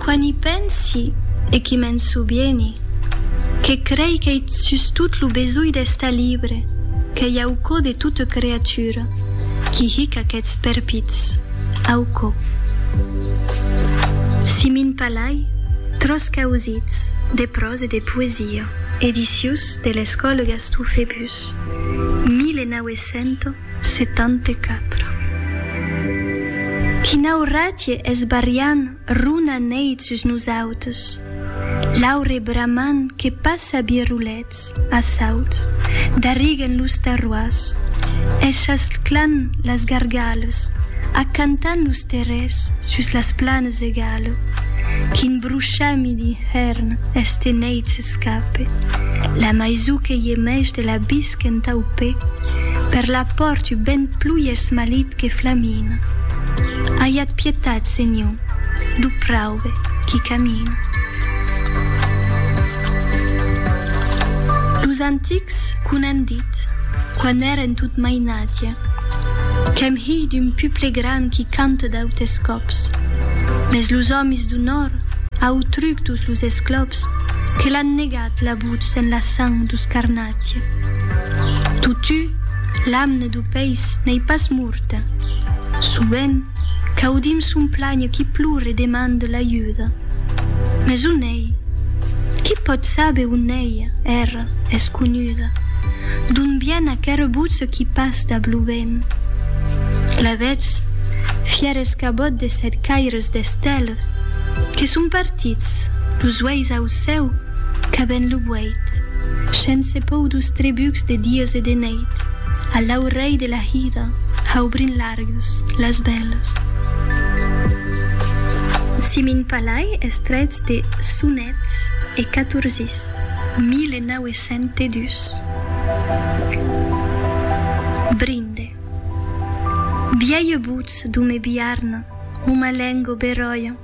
Quan i pensi e qui me'n sovieni, que crei qu'ei sustot lo besonh d'estar libre qu'ei au cò de tota creatura qui hic aquests perpits au cò. Simin Palay, Tros causits, de pròsa e de poesia, edicius de l'Escòla Gaston Fébus, 1900. 74. Quina auratge es barriant runa neit sus nosautes, l'aure bramant que passa birrolets a sauts, darriguen los terroirs, eschasclan las gargales, acantan los terrers sus las planes egale, quin bruchami d'inhèrn este neit s'escape, la maisou que gemèch de la bisca, qu'entau pè, per la pòrt u ben plui esmalit que flamina. Aiat pietat, Senhor, du praube qui camina. Los antics qu' un an dit, quan èren tot mainatge, qu'èm hilh d'un puple gran qui cante d'autes còps, mes los òmis du nòrd, autruc dus los esclòps, que l'an negat la votz en la sang dus carnats. Atieu. Totu, l'amne du peis n'ei pas morta. Sovent, qu'audim son planh qui plore e demande l'ajuda. Mes on ei? Qui pòt saber on ei? Era es conuda. D'on vien aquera votz qui pas dab lo vent? La vetz, fièr escabòt de sèt caires d'esteles, que son partits, los uelhs au cèu, Qu'aben lo vueit. Shens e pòu dus trebucs de dies e de neit, a l'aurelh de la hida, haubrin largues, las bèlas. Si min palai es trèits de sonets e catorzis, 1902. Brinde. Biaie butz d'o me biarna, o ma lengo beròia.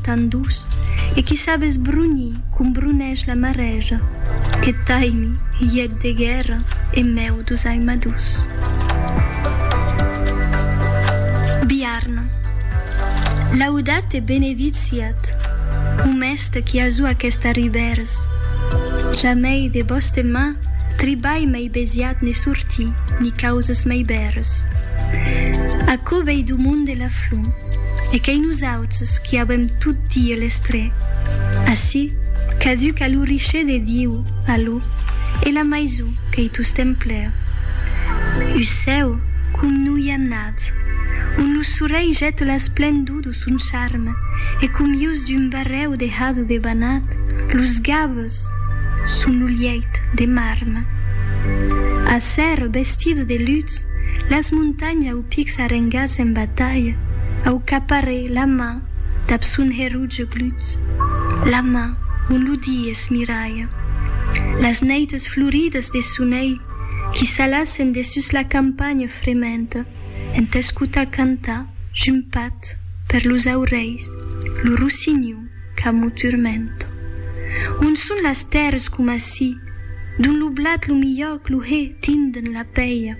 Tan doç, e qui sap esbrunhi com brunhèsh la marèja, que taimi hièc de guèrra en mèu dus aimadús. Biarna. Laudat e benedit siat, o mèste qui azú aquesta ribèrs. Jamèi de bòste mà tribalh mèi besiat ne sortí, ni causes mèi bèrs. Aquò vèi du monde la flor, e qu'ei nosaut. Nosautres qui avèm tot die les tres. Ací, caduc a lo richer de Diu, a lo, e la maisó qu'ei tostemp plèu. U cèu com no i a nath, on lo sorelh jèt l'esplendor do son charme e com ius d'un barrèu de hado de banat, los gaves son lo lièit de marme. Acer, vestide de lutz, las montanhas au. Pics arrengas en batalha, au caparè la man dab son heruge glut, la man on lo di es miralha. Las neites floridas de sonelh qui s'alassen de sus la campanha frementa en t'escotar cantar jumpat per los aurelhs lo rossinhon qu'amo turmenta. On son las tèrres coma si, dont lo blat lo milhòc lo hè tinden la pèia.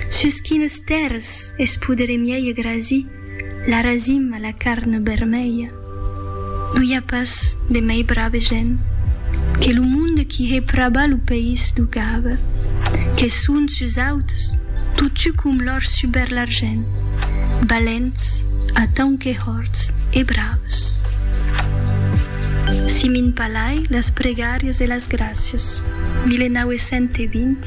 Sus quines tèrres es podere mièi grasir la rasim a la carn bermèia? No i a pas de mèi brave gent que lo monde qui hè praba lo país d'o gave, que son sus auts totu com l'òr suber l'argent, balents atant que hòrts e braves. Simin Palai, las pregàrias e las gràcias, 1920.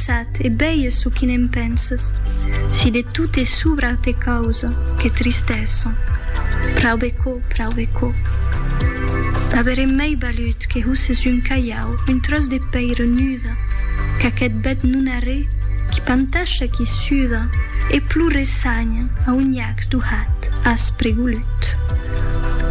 Sat, e bèie çò qui ne'n penses. Si de tot e subra te causa que tristesa. Prau be co, prau be co. Averem mei valut que husses un calhau, un tròç de pèira nuda, qu'aqueth bèth non arré qui pantasha, qui suda e plure sanha a un nhacs duhat, aspre, golut.